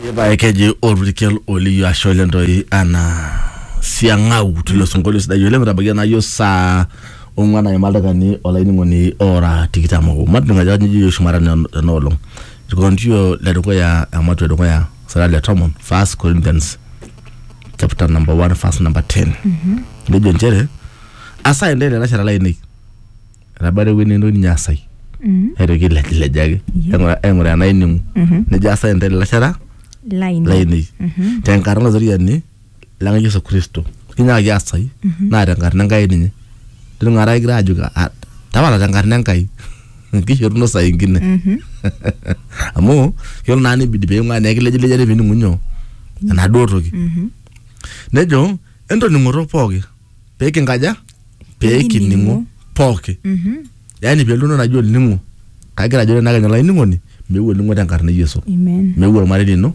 Ipae keji olpurkel oliyo ashe oleng toi ana siang'au tilo sinkolio sidai oleng metabaiki naa yiok saa ong'wan aima ildakikani olainining'oni ora tikitam obo. Matijing'a ajo kanyioo ejoito shumata tena tena olong. Olkigerontio le dukuya ematua e dukuya sura le tomon First Corinthians chapter number one verse number ten. Nejo inchere asaa intae ilalashera lainei etabata ewueji netii ninye asai Mhm. naitoki ailejilej ake Yeah. aing'ura- aing'uraa enaining'u Mhm. nejo asai intae ilalashera Lainei. lainei Mhm. tenkarna olatoriani lang yesu kristo kinyaaki asai naa tenkarna enkai ninye tining'ata kigira ajoki "Ah, tapala tenkarna enkai kishoruno saa ingine Mhm. amu yiolo naa nibidi peing'ua naa ekilejilejare pining'u nyoo enaduo toki Mhm. nejo entoning'oto pooki pee kinkaja pee kining'u pooki Mhm. yaani pee eluno naji olning'o kagira ajo tenakenya olainining'oni meeu olning'o tenkarna e Yesu Amen. meeu ormarei lino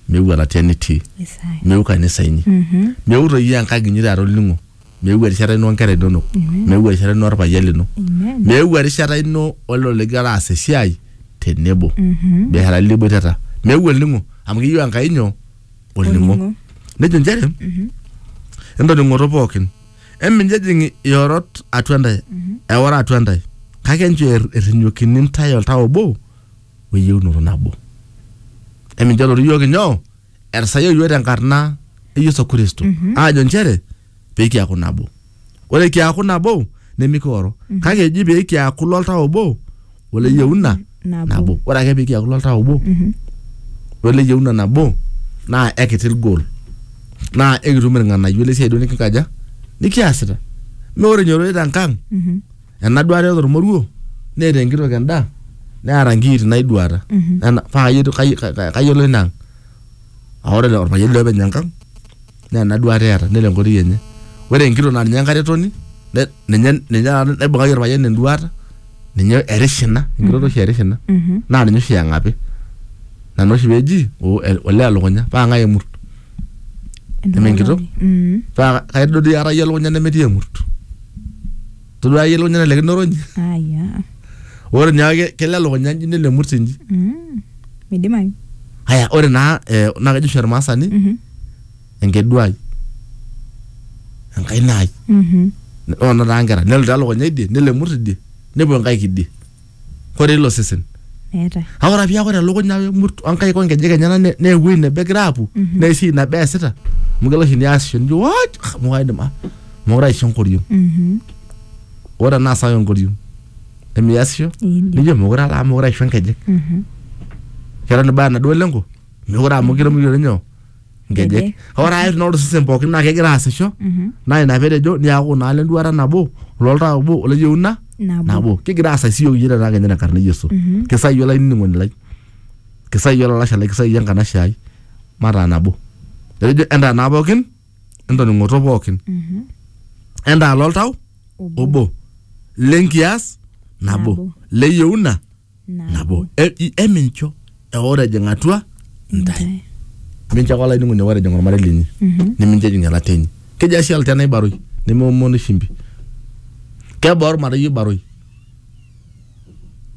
meeu elatia nitii Isaya. meeu kanisa inyi Mhm. meeu toi iyie enkang inyi taata olning'o meeu erishata ino onkera inonok meeu erishata ino orpayian lino Amen. meeu erishata ino olelo ligira aas esiai tenebo Mhm. biashara liboitata meeu olning'o amu keyieu Enkai nyoo olning'o nejo nchere entoning'oto pookin eminjejing iorot atua ntae eora atua ntae kake enchoo er- errinyokini ntae oltau obo weyieunoto nabo emincho elotu iyiook inyoo etisayioki iyiook tenkarna e Yesu Kristo aajo nchere pee kiaku nabo. Ore kiaku nabo nemikioro kake eji pee kiaku loltau obo ole yieuna Nabo. nabo. Ore ake pee kiaku loltau obo ole yieuna nabo naa ekiti goal naa ekitum irng'anayio le siai duo nikinkaja nikiasita. Naa ore inyororita te nkang Mhm. ena duata eeta ormoruo neeta enkitok endaa neeta nkiiti naiduata Nena- paa kayieu- kayieu- kayiolo ina ang. Aa ore orpayian liopeny enkang naa ena duata eeta nelo enkoitoi enye ore enkitok naa ninye enkaretoni ne- ninye ninye taata naibung'aki orpayian enduata ninye erish ina enkitok oshi erish ina Mhm. naa ninye oshi eng'api nana oshi peji o- e- olee elukunya paa ng'ae emurt Neme enkitok? Mm. paa kaidodi aata iyie elukunya nemetii emurt todua iyie elukunya nelekino orony aya ore nyaake kelo elukunya nji nelo emurt nji Mm. midimayu haya ore naa eh, naa kejo oshi ormaasani Mhm. enkeduai enkaina ai Mhm. ore naa taa nkera nelo taa elukunya idie nelo emurt idie nepuo nkaik idie kore ilo sesen meetae kake ore piaku ore elukunya emurt onkaik onkejek enyena ne- naa ewuei nebo egira aapuo naa esiai nabo easita amu kelo oshi niasisho nijo "What? Ah, amu kaidim ah, mokure aisho enkoriong Mhm. ore enaa sawa enkoriong nemiasisho Iindim. nijo mokure ala amu mokure aisho nkejek Mhm. kelo nibaya enaduo lengo mekure amu kiremo iyiolo nyoo nkejek ore ae naa ore osesen pookin naa kegira aasisho naa ina petejo niaku naa lenduata nabo ololtaa obo oleyieuna Nabo. nabo kigira aasai siyiok iyie tenaa kenya tenkarna e yesu kisai iyie olainining'oni lai kisai iyie olalashe lai kisai iyie enkanashe ai mataa nabo etejo entaa naa pookin entoning'oto pookin entaa loltau obo lenkias nabo Nabo. leyieuna nabo E- i- emincho eoro ejing atua ntae mincho ake olainining'oni eoro ejing ormarei linyi nimincho ejing elata enyi keji ashi elata enaibaroi nemeomonu shimbi kebaa ormarei oibaroi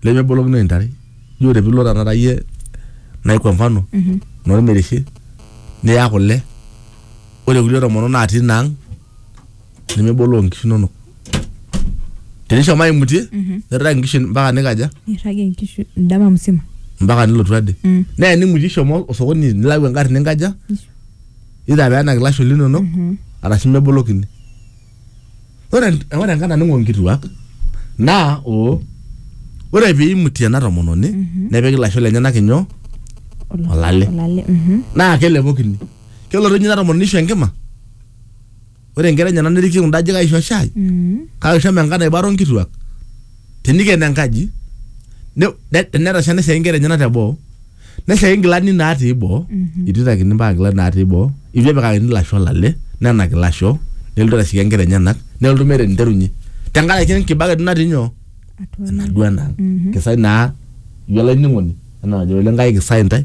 lemebolokino intare ijo ore piilo tanakata iyie nai kwa mfano normereshe niya kule ore kulie tomonok natii ina ang nemeboloo inkishu inonok tenishomo aimutie nirrag inkishu mpaka nikaja nirragie nkishu ndama msima mpaka nilotu ade Mm. neya nimutie ishomo osokoni nilau engarri ninkaja either peenak ilasho linonok arashu mebolokini ore en- ore enkata ning'o nkituak naa o ore piimutie ena tomononi nepiki ilasho lenyenak inyoo Ola- Olale. olale mhm. naa kelepokini kelotu ninye ina tomononi ishu enkima ore nkera enyenak nerikie kunda ajijik aisho shai Mm. kake shomo enkata naibaro nkituak teniken enkaji ne- ne- tenetasha neshaki nkera enyenak teboo neshaki nkilani natii boo Mhm. itu itakini mpaka nkilani natii boo itu epikakini ilasho olale nenaki ilasho nelotu aitashiki nkera enyenak nelotu meeta eniterunye tenkaraki enkibaka itu natii nyoo Atua ena. enaduo enang Mhm. kisai naa ijo olainining'oni enaa najo oleng kai kisai ntae